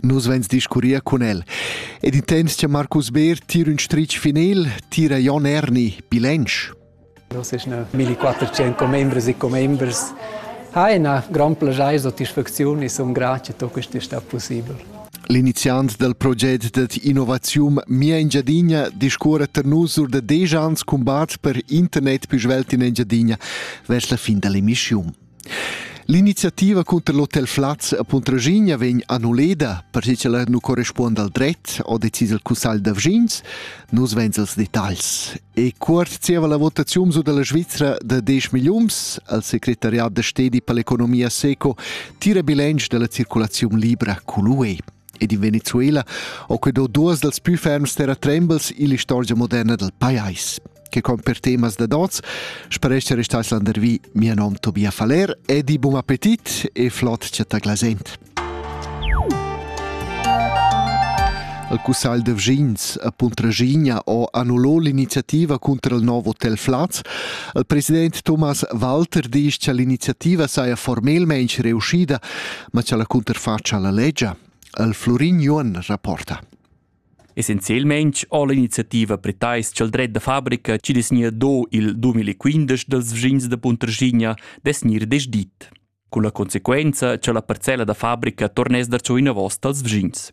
Nus vegns discurrir cun el. Ed intens che Marcus Beer tira un stritg final, tira Jon Erni, bilancio. Nus eschna 1400 commembres e commembres ha ina gran plagiar satisfacziun e sun grati che questo è stato possibile. L'iniziant dal proget dad innovaziun Mia Engiadina discorre per nus sur da desch ans combat per internet più svelt in Engiadina vers la fin dell'emissione. L'iniziativa cunter l'hotel Flaz a Puntraschigna vegn annulleda, perche ch'ella nu correspuonda al dret, ho decis il cussagl da vschins. Nus vains els detagls. E cuort zieva la votaziun su dalla Svizra da 10 milliuns al secretariat da stedi per l'economia seco tira bilancio della circolazione libra cu l'UE. Ed in Venezuela ho que do duos dals pü ferms terratrembels illa istorgia moderna dal pajais che con per temas da dots sparesce restais landervi mia nom Tobia Faller e di buon appetit e flot chatta glasent. Al Cussagl de Vgins a Puntragigna ho annullò l'iniziativa contro il nuovo Hotel Flaz. Il president Thomas Walter disch cha l'iniziativa saja formelmaing reuscida ma cha la cunterfatscha la legia, el Florin Juon rapporta. Essenzielmaing ho l'iniziativa pretais cha'l dret da fabrica chi desgna do il 2015 dals vschins da Puntraschigna desgnir desdit, con la conseguenza cha la parcella da fabrica torness darcho inavos dals vschins.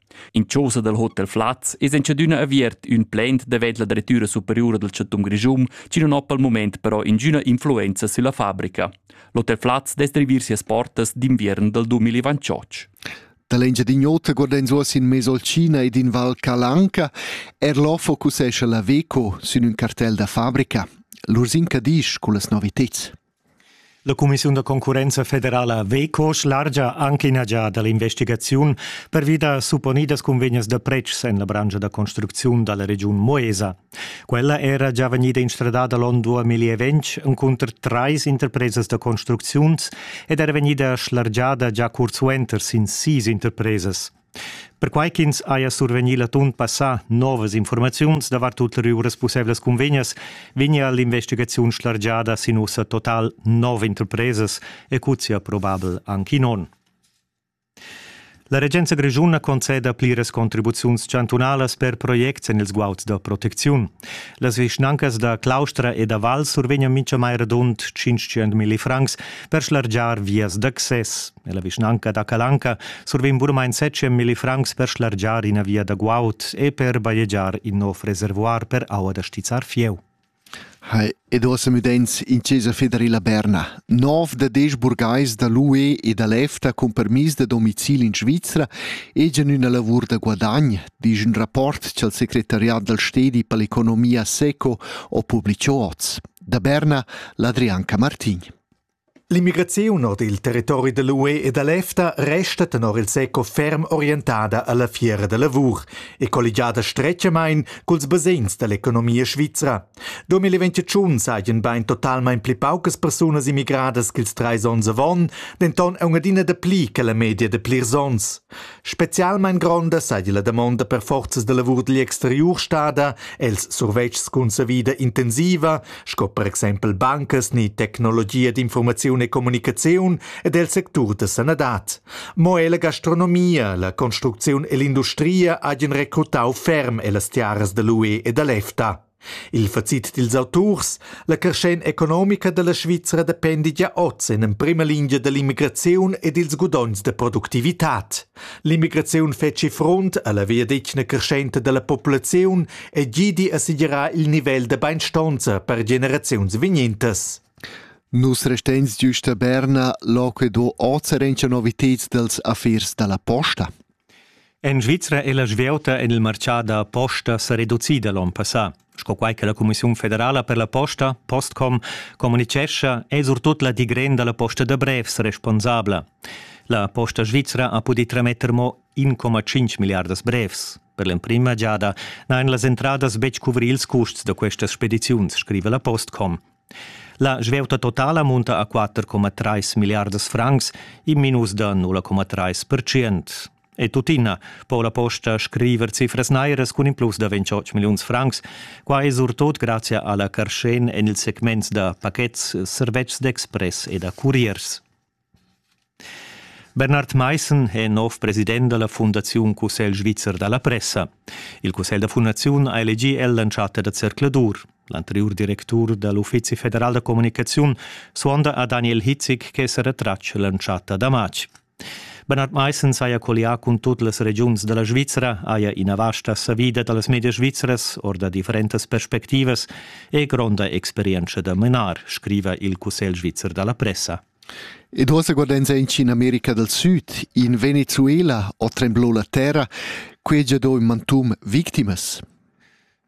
In chausa dal Hotel Flaz es entschadüna aviert ün plaint davent la Drettüra superiura dal Chantun Grischun, chi non ho pel mumaint però ingüna influenza sülla fabrica. L'Hotel Flaz dess drivir sias portas d'inviern dal 2028. Da l'Engiadin'Ota guardens uoss in Mesolcina ed in Val Calanca er l'ho focusescha la Veco sün ün cartel da fabrica. L'Ursin Cadisch cullas noviteds. La cumissiun da concurrenza federala Veco schlargia anche ina giada l'investigaziun pervi da supponidas cunvegnas da pretschs en la branscha da construcziun dalla regiun Moesa. Quella era già vegnida instradada l'onn 2020 encunter trais interpresas da construcziuns ed era vegnida schlargiada già curzsuenter sin sis interpresas. Perquai ch'ins haja survegnì l'atun passà novas informaziuns davart ulteriuras pussaivlas cunvegnas, vegnia l'investigaziun schlargiada sin ussa total nov interpresas e cuzzia probabel anc in onn. La regenza grischuna conceda pliras contribuziuns chantunalas per projects en ils guauds da protecziun. Las vischnancas da Claustra e da Val survegnan mintgamai radund 500.000 francs per schlargiar vias d'access. Nella vischnanca da Calanca survegn bunamain 700.000 francs per schlargiar ina via da guaud e per bajegiar in nov reservuar per aua da stizzar fieu. Hai, ed ossa müdens in Cesa federila Berna. Nov da desch burgais da l'UE e da l'EFTA cun permis da domicil in Svizra egian üna lavur da guadagn, disch un rapport ch'al secretariat dal stedi per l'economia seco ho publicho oz. Da Berna, l'Adrianca Martin. L'immigraziun ord il territori da l'UE e da l'EFTA resta tenor il SECO ferm orientada a la fiera da lavur e colligiada stretgamain culs basegns da l'economia svizra. 2021 sajan bain totalmain pli paucas persunas immigradas ch'ils trais onns avon, denton è un'adina dapli che la media da plirs onns. Spezialmein gronda seigi la damonda per forzas da lavur digl exteriur stada els survetschs cun savida intensiva, sco per exempel bancas ni tecnologia d'informaziun e communicaziun ed el sectur da sanadad. Mo ella gastronomia, la construcziun e l'industria hagien recrutau ferm ellas tiaras da l'UE e da l'EFTA. Il facit dils auturs, la carschenza economica dalla Svizra dependi gia oz en emprema lingia dall'immigraziun e dils gudogns da productivitad. L'immigraziun fetschi frunt alla viadetgna creschenta dalla populaziun e gidi a segirar il nivel da beinstonza per generaziuns vignentas. Nus restens giusta Berna, loco e do oz rencha novitads dels affers dalla posta? En Svizra è la svieuta en il martgà da posta sa reducida l'onn passà. Sco quai che la Cumissiun federala per la posta, Postcom, communitgescha, è surtut la digren da la posta da brevs responsabla. La Posta Svizra ha pudì trametter mo 1,5 miliardas brevs. Per l'emprima giada n'han las entradas betg cuvri ils custs da questas spediziuns, scrive la Postcom. La svieuta totala munta a 4,3 milliardas francs, in minus da 0,3%. E tuttina po la posta scriver cifras nairas cun in plus da 28 milliuns francs, quai surtot grazie alla carschen en il segment da pakets, servetschs d'express e da curiers. Bernhard Maissen è nov president da la Fundaziun Cussegl svizzer da la pressa. Il cussegl da fundaziun ha elegì el l'entschatta da zercladur. L'anteriur directur da l'Uffizi federal da communicaziun suonda a Daniel Hitzig che sa retratg l'entschatta da matg. Bernhard Maissen saja collià cun tut las regiuns da la Svizra, haja ina vasta savida da las medias svizras or da differentas perspectivas e gronda experientscha da menar, scriva il Cussegl svizzer da la pressa. Ed uossa guardains aunch in America dal Süd, in Venezuela o tremblò la terra, quai ha già do ün mantun victimas.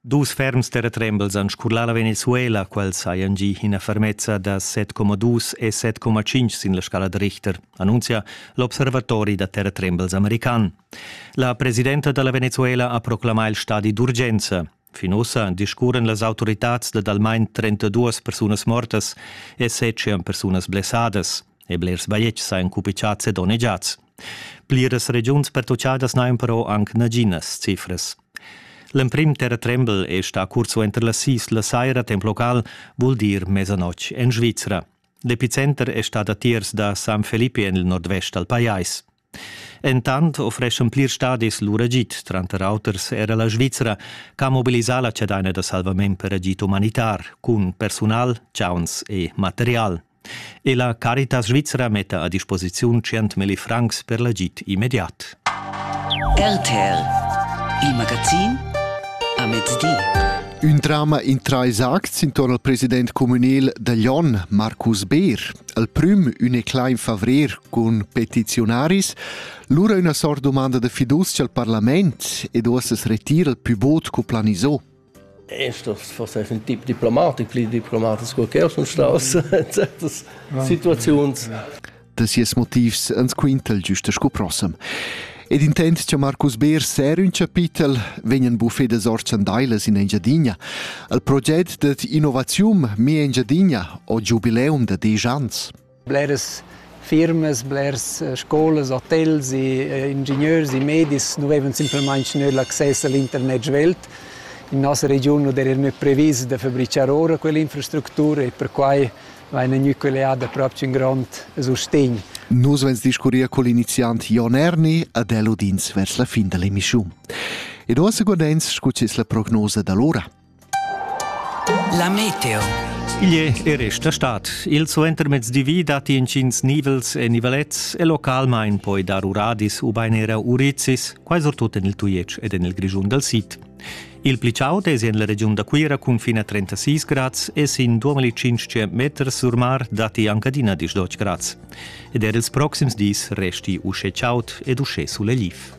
Dus ferms terratrembels han scurlà la Venezuela, quels hajan gì ina fermezza da 7,2 e 7,5 sin la scala da Richter, annunzia l'observatori da terratrembels american. La presidenta da la Venezuela ha proclamà il stadi d'urgenza. Fin ussa discurren las autoritads dad almain 32 persunas mortas e 700 persunas blessadas, e blers bajetgs ein cupichats e donnegiats. Pliras regiuns pertuchadas n'hain però anc naginas cifras. L'emprim terratrembel è sta cursuenter la sis la saira temp local, vul dir mezzanoc en Svizra. L'epicenter è stat a tiers da San Felipe en il nordvest dal pajais. Entant offreschan plirs stadis lur agid, tranter auters era la Svizra, che ha mobilisà la chadaina da salvament per agid umanitar cun persunal, chauns e material. E la Caritas Svizra metta a disposiziun 100.000 francs per l'agid immediat. RTL, il magazin a mezdi. Ün drama in trais acts intorno al president communal da Lyon, Marcus Beer. al prüm ün e clain favrer cun petiziunaris, lura üna sort domanda de fiducia al parlament ed uossas retira il pü bod co planisò. Estos forse ein tip diplomatic, pli diplomatic sco che sun staus certas situaziuns. Da sies motivs ans quintel giusta sco prossem. Ed intent cha Marcus Beer ser ün chapitel vegnan buffedas orchandailas in Engiadina al proget dad innovaziun Me Engiadina o giubileum da desch ans. Bleras firmas, blers eh, scolas, hotels e eh, ingegneurs e medis nu vevan simplamaing gnü l'access all internet svelt. In nossa regiun nu d'eran previs da fabrichar ora quell'infrastructura e perquai va in ün'ücleada propcha ün grond sustegn. Nus vens discurrir col iniziant Jon Erni ad el udins vers la fin da l'emischiun. E do a secundens scucis la prognosa d'allora. La meteo. Igl è resta stat. Il suentermezdi datti intgins nivels e nivelets e localmain poi dar uradis u bain era urizis, quai surtut en il Tujetsch ed en il Grischun dal sid. Il pli chaud es en la regiun da Cuira cun fin a 36 grads e sin 2500 meters sur mar datti anche adina 18 grads. Ed er ils proxims dis resti uschè chaud ed uschè sulegliv.